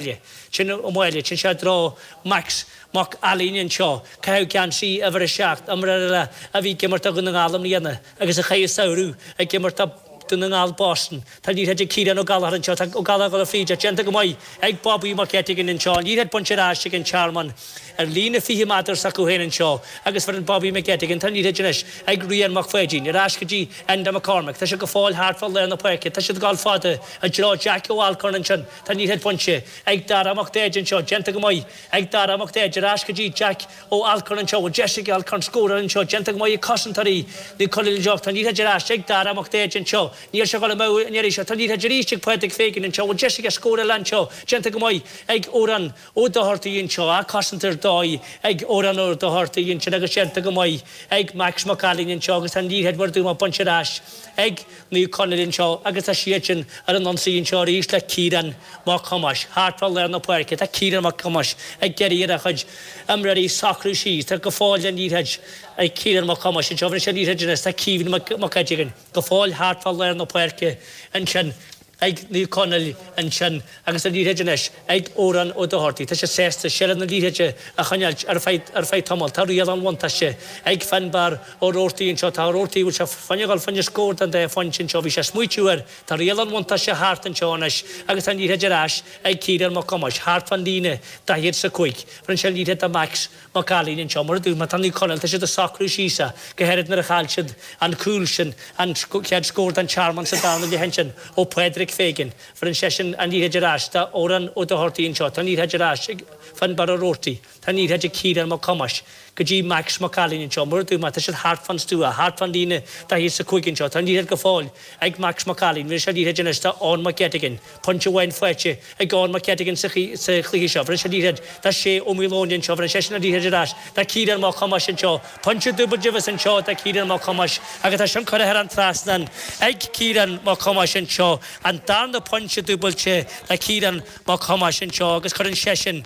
baile. Sin an mhaith leis. Sin sé drogha Max Mac Ailín anseo. Caitheadh geansaí uimhir a seacht iomrá a bhí ag imirt do Dhún na nGall i mbliana agus a chaith an samhradh ag imirt do Dún na nGall Boston. Tá liathróid ag Ciarán O Gallagher anseo. Tá O Gallagher dul fríd ach déanta go maith ag Bobby Mac Eiteagain anseo. An liathróid bainte ar ais ag an Tearmann ar líne fiche meadar s'acu féin anseo agus foireann Bobby Mac Eiteagain. Tá liathróid anois ag Rian Mac Phaidín. Ar ais go dtí Enda McCormick. Tá sé go fóill thart fá lár na páirce. Tá siad ag dul fada i dtreo Jackie O Alcorn ansin. Tá an liathróid bainte ag Dara Mac Daid anseo, déanta go maith ag Dara Mac Daid, ar ais go dtí Jack Ó hAllcorn anseo, bhfuil deis ag Allcorn scóráil anseo, déanta go maith ag cosantóirí Naomh Conaill anseo ach tá an liathróid ar ais ag Dara Mac Daid anseo, níl sé dhul amú an iarraidh seo, tá an liathróid arís ag Pádraic Fagan anseo, bhfuil deis aige scór eile anseo, déanta go maith ag Odhrán Ó Dochartaigh anseo, á cosaint ar dóigh ag Odhrán Ó Dochartaigh ansin agus déanta go maith ag Max Mac Ailín anseo agus tá an liathróid mar a deirim bainte ar ais ag Naomh Conaill anseo agus tá siadsan ar an ionsaí anseo arís le Ciarán Mac Thomáis. Thart fá lár na páirce tá Ciarán Mac Thomáis ag iarraidh ar a chuid imreoirí socrú síos. Tá go fóill an liathróid ag Ciarán Mac Thomáis anseo, pas an liathróid anois, tá Caoimhín Mac Eiteagain go fóill thart fá lár na páirce ansin. ag Naomh Conaill ansin agus tá an liathróid anois ag Odhrán Ó Dochartaigh. Tá sé sásta seilbh na liathróide a choinneáilt ar feadh ar feadh tamall. Tá riail an bhuntáiste ag Finnbarr Ó Roartaigh anseo. Tá Ó Roartaigh bhfuil sé ag gabháil fá choinne scór den dá phointe anseo. Bhí sé smaoitiú air. Tá riail an bhuntáiste thart anseo anois agus tá an liathróid ar ais ag Ciarán Mac Thomáis thart fán líne daichead is a cúig. Bheireann sé an liathróid do Max. Mac Cailín anseo, mar a deirim, tá Naomh Conaill, tá siad ag socrú síos a, go háirid nuair a chaill siad an cúl sin, an chéad scór don Tearmann sa darna leath ansin ó Phádraic Feighan, bheireann seisean an liathróid ar ais do Odhrán Ó Dochartaigh anseo, tá an liathróid ar ais ag Fionnbarra Roarty, tá an liathróid ag Ciarán Mac Thomáis go dtí Max Mac Cailín anseo, mar a deirim, tá siad thart fán stua, thart fán líne daichead is a cúig anseo, tá an liathróid go fóill ag Max Mac Cailín, bheir sé an liathróid anois do Eoin Mac Eiteagain, pointe amháin faighte ag Eoghan Mac Eiteagain sa chluiche seo. Bheir sé an liathróid do Shea O Maoileoin anseo, bheireann seisean an liathróid ar ais do Chiarán Mac Thomáis anseo, pointe dúbailte b'fhéidir anseo do Chiarán Mac Thomáis agus tá sin curtha thar an trasnán ag Ciarán Mac Thomáis anseo, an darna pointe dúbailte do Chiarán Mac Thomáis anseo agus cuireann seisean.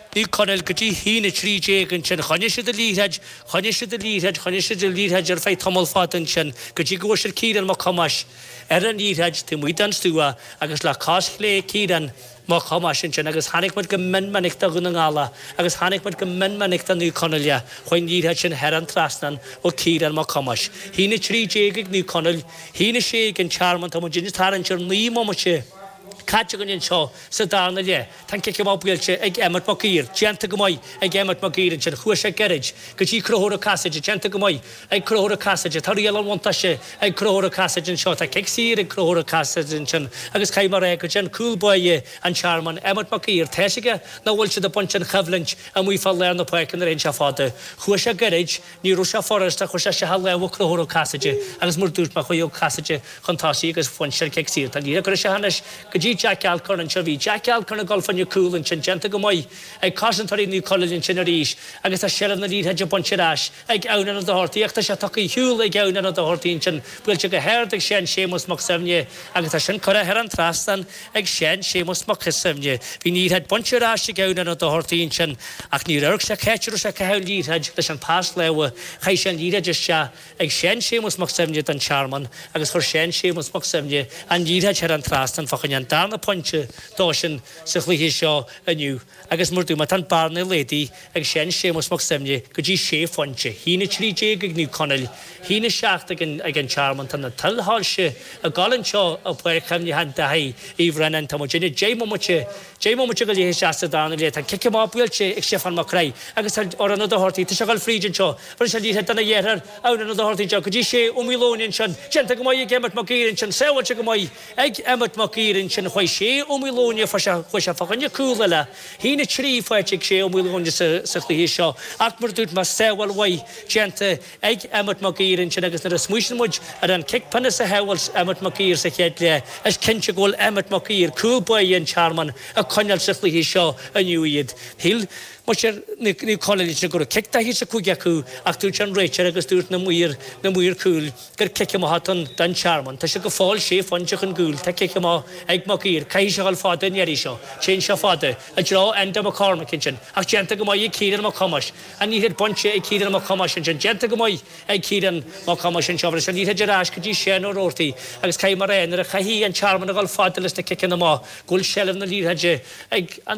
Naomh Conaill go dtí hAoine 13 ansin. Choinnigh siad an liathróid, choinnigh siad an liathróid, choinnigh siad an liathróid ar feadh tamall fada ansin go dtí go bhfuair siad Ciarán Mac Thomáis ar an liathróid taobh amuigh den stua agus le cos chlé Ciarán Mac Thomáis ansin agus chonaic muid go mion minic do Dhún na nGall agus chonaic muid go mion minic do Naomh Conaill chuaigh an liathróid sin thar an trasnán ó Ciarán Mac Thomáis. Haoine 13 ag Naomh Conaill, Haoine 16 ag an Tearmann, tá muid anois tarraingt ar naoi mbomaite caite againn anseo sa darna leath. Tá an cic amach buailte ag Emmet Mac Uidhir, déanta go maith ag Emmet Mac Uidhir ansin, chuaigh sé gairid go dtí Conchúr Ó Casaide, déanta go maith ag Conchúr Ó Casaide, tá riail an bhuntáiste ag Conchúr Ó Casaide anseo, tá cic saor ag Conchúr Ó Casaide ansin agus caithfidh mé a rá go dtí an cúl báire an Tearmainn, Emmet Mac Uidhir, tá fhios aige nach bhfuil siad ag baint an choimhlint amuigh fá lár na páirce nuair a théann sé fada, chuaigh sé gairid, Ní raibh sé furasta ach chuir sé isteach a lámh ar Conchúr Ó Casaide agus mar dúirt mé chuaigh Ó Casaide chun tosaigh agus bhain siad cic saor. Tá an liathróid curtha isteach anois go dtí Jack Alcorn anseo. Bhí Jack Alcorn ag dul fá choinne cúl ansin déanta go maith ag cosantóirí Naomh Conaill ansin arís agus tá seilbh na liathróide bainte ar ais ag Adhamhnán Ó Dochartaigh ach tá sé tugtha ar shiúl ag Adhamhnán Ó Dochartaigh ansin buailte go hard ag Seán Séamus Mac Suibhne agus tá sin curtha thar an trasnán ag Seán Séamus Mac Suibhne. Bhí an liathróid bainte ar ais ag Adhamhnán Ó Dochartaigh ansin, ach níor amharc sé cá háit a raibh sé ag caitheamh an liathróid leis an pas láimhe. Chaith sé an liathróid isteach ag Seán Séamus Mac Suibhne don Tearmann agus chuir Seán Séamus Mac Suibhne an liathróid thar an trasnán fá choinne an darna pointe dósan sa chluiche seo inniu. Agus mar dúirt mé tá an bhearna laghdaithe ag Seán Séamus Mac Suibhne go dtí sé phointe, a haon 13 ag Naomh Conaill, a haon 7 ag an ag an Tearmann, tá na tuilsoilse ag goil anseo i bPáirc Chuimhneacháin Daithí Uí Bhraonáin, tá muid ina 10 mbomaite, 10 mbomaite go leith isteach sa darna leath, tá cic amach buailte ag Stiofán Mac Craith agus tá Odhrán Ó Dochartaigh, tá sé ag goil fríd anseo, rinne sé liathróid dona dheartháir Odhrán Ó Dochartaigh go dtí Shea Ó Maoileoin ansin, déanta go maith ag Emmet Mac Uidhir ansin, sábháilte go maith. Ag Emmet Mac Uidhir ansin chuaidh Shea Ó Maoileoin fa sé chuaidh sé fá choinne cúl eile. A haon 3 faighte ag Shea Ó Maoileoin sa chluiche seo ach mar dúirt mé sábháil mhaith déanta ag Emmet Mac Uidhir ansin agus nuair a smaoiníonn muid ar an cic pionóis a shábháil Emmet Mac Uidhir sa chéad leath is cinnte go bhfuil Emmet Mac Uidhir cúl báire an Tearmainn ag coinneáil sa chluiche seo inniu iad. Shíl muintir Naomh Conaill ansin go raibh cic 45 acu ach dúirt an réiteoir agus dúirt na maoir cúl. gur cic amach atá ann don Tearmann. Tá sé go fóill sé phointe chun cúil. Tá cic amach ag Mac Uidhir. Caithfidh sé a dhul fada an iarraidh seo. Téann sé fada. I dtreo Enda McCormick ansin. Ach déanta go maith ag Ciarán Mac Thomáis. An liathróid bainte ag Ciarán Mac Thomáis ansin. Déanta go maith ag Ciarán Mac Thomáis anseo. Bhris an liathróid ar ais go dtí Seán Ó Roarty agus caithfidh mé a rá nuair a chaithfidh an Tearmann a dhul fada leis na ciceanna amach go bhfuil seilbh na liathróide ag an